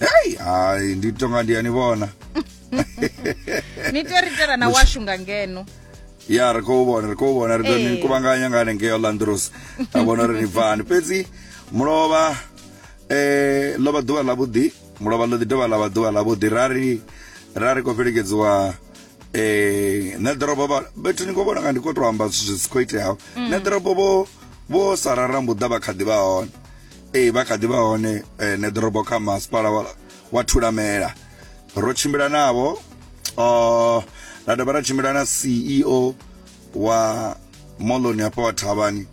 hei hai ndi tonga ndi ani vhona ni tea ri tera na washu nga ngeno ya ri khou vhona ri khou vhona ri ni eh. kuvhanganya nga hanengeo landros a vhona uri ni bvani fhedzi mulovha um eh, ḽo vha ḓuvha ḽavhuḓi mulovha ḽo ḓi dovha ḽa vha ḓuvha ḽavhuḓi ra ri ra ri khou fhelekedziwa eh na ḓorobo ba bethu ni khou vhona nga ndi khou tou amba zwithu zwi si khou iteaho mm. na ḓorobo vho vho sarara mbuḓa vha kha ḓi vha hone ee vha kha ḓi vha hone eh, neḓorobo kha masipala wa thulamela ro tshimbila navho uh, ra dovha ra tshimbila na ceo wa moloni hafha wa thavhani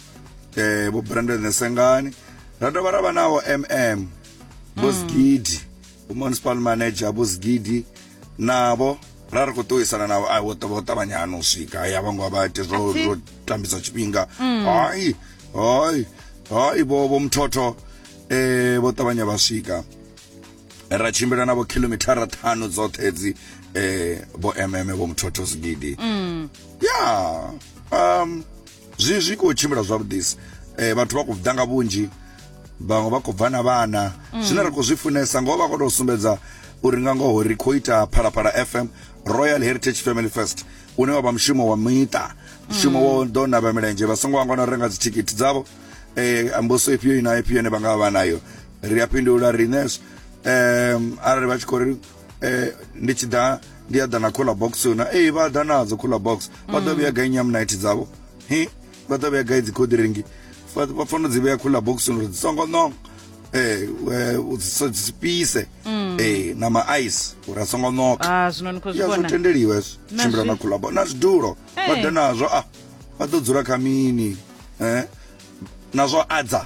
eh, vho brandon nesengani ra dovha ra vha navho mm vho zigidi mm. municipal manager vho zigidi navho ra ri khou ṱuwisana navho a vho vho ṱavhanya hano u swika hayi a vho ngo vha ite zwo zwo tambisa tshifhinga mm. hayi hayi hayi vho vho muthotho eh vho ṱavhanya vha swika ra tshimbila navho khilomithara ṱhanu dzoṱhe dzi eh vho mm vho muthotho zigidi mm. ya um zwi zwi khou tshimbila zwavhuḓisi um vhathu vha khou ḓa nga vhunzhi vhaṅwe vha khou bva na vhana mm. zwine ra khou zwi funesa ngoho vha khou tou sumbedza uri nga ngoho ri khou ita phalaphala fm royal heritage family first une wa vha mushumo wa miṱa mushumo wo ḓo navha milenzhe vha songo vhangwana u renga dzithikhithi dzavho um amboso ifhio ina ifhio ine vha nga vha vha nayo ri a fhindula riṋe um arali vha tshi khou ri eh ndi tshi ḓa ndi a ḓa na cooler box yona ee vha ḓa nadzo cooler box vha ḓo vhuya gai nyamnight dzavho hi vha ḓo vhuya gai dzi codringi vha fanela dzi vhea cooler box uri dzi songo ṋonga eh usipise mm. eh nama ice uri asongo noka ah zwino ni khou zwi vhona tendeliwa hezwo tshimbila na khulabo na zwidulo vha ḓe nazwo ah vha ḓo dzula kha mini eh nazwo adza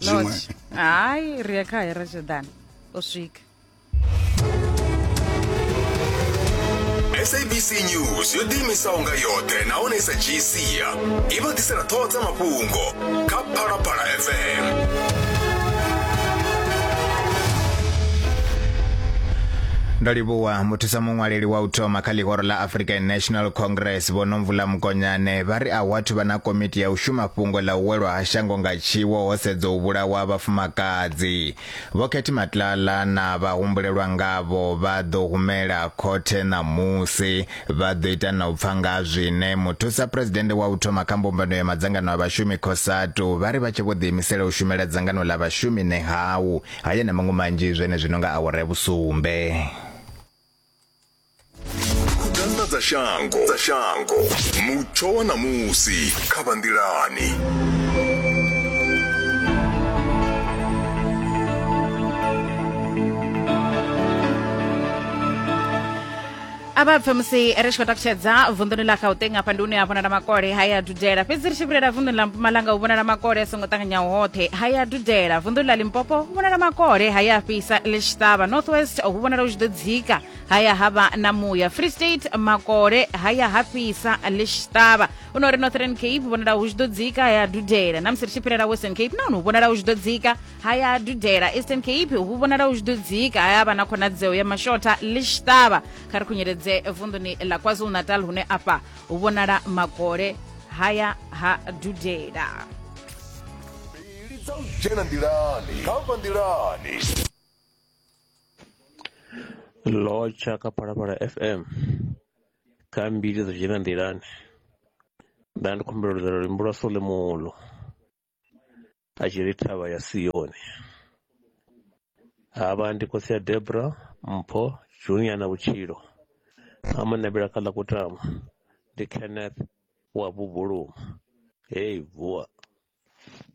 zwiṅwe hayi ri ya kha hera jordan o swika sabc news yo ḓiimisaho nga yoṱhe nahone sa dzhii sia i vha ḓisela ṱhoho dza mafhungo kha phalaphala fm ndo livhuwa muthusa muṅwaleli wa u thoma kha ḽihoro ḽa african national congress vho nomvula mukonyane vha ri a hu athu vha na komiti ya u shuma fhungo ḽa u welwa shango nga tshiwo ho sedzwa u vhulawa ha vhafumakadzi. Vho Khethi Matlala na vhahumbulelwa ngavho vha ḓo humela khothe ṋamusi vha ḓo ita na u pfa nga zwine muthusa phuresidennde wa u thoma kha mbumbano ya madzangano a vhashumi Cosatu vha ri vha tshe vho ḓiimisela u shumela dzangano ḽa vhashumi Nehawu. Haya na maṅwe manzhi zwenezwino nga awara ya vhusumbe. Khudano dza shango dza shango mutsho wa ṋamusi kha vha nḓilani a vha pfe musi ri tshi khou takutshedza vunḓuni ḽa gauteng afha ndi hune ha vhonala makole ha ya dudela fhedzi ri tshi vhulela vunḓuni ḽa mpumalanga hu vhonala makole a songo ṱanganyaho hoṱhe ha ya dudela vunḓuni ḽa limpopo hu vhonala makole ha ya fhisa ḽi tshi ṱavha north west hu vhonala hu tshi ḓo dzika haya ha vha na muya free state makole haya ha fhisa ḽi tshi ṱavha u no ri northern cape vhonala hu tshi ḓo dzika haya dudela na musi ri tshi fhirela western cape nahone hu vhonala hu tshi ḓo dzika haya dudela eastern cape hu vhonala hu tshi ḓo dzika haya vha na khonadzeo ya mashotha ḽi tshi ṱavha kha ri khunyeledze vunḓuni ḽa kwazulu natal hune afha hu vhonala makole haya ha dudela dzena nḓilani kha nḓilani lotsha kha phalaphala fm kha mbili dzo dzhena nḓilani nda ndi khumbela ludzela luimbo lwa solemulo a tshi ri thavha ya siyoni havha ndi khosi ya debra mpho junior na vhutshilo amanabela kha ḽa kutama ndi kenneth wa bubuluma hei vuwa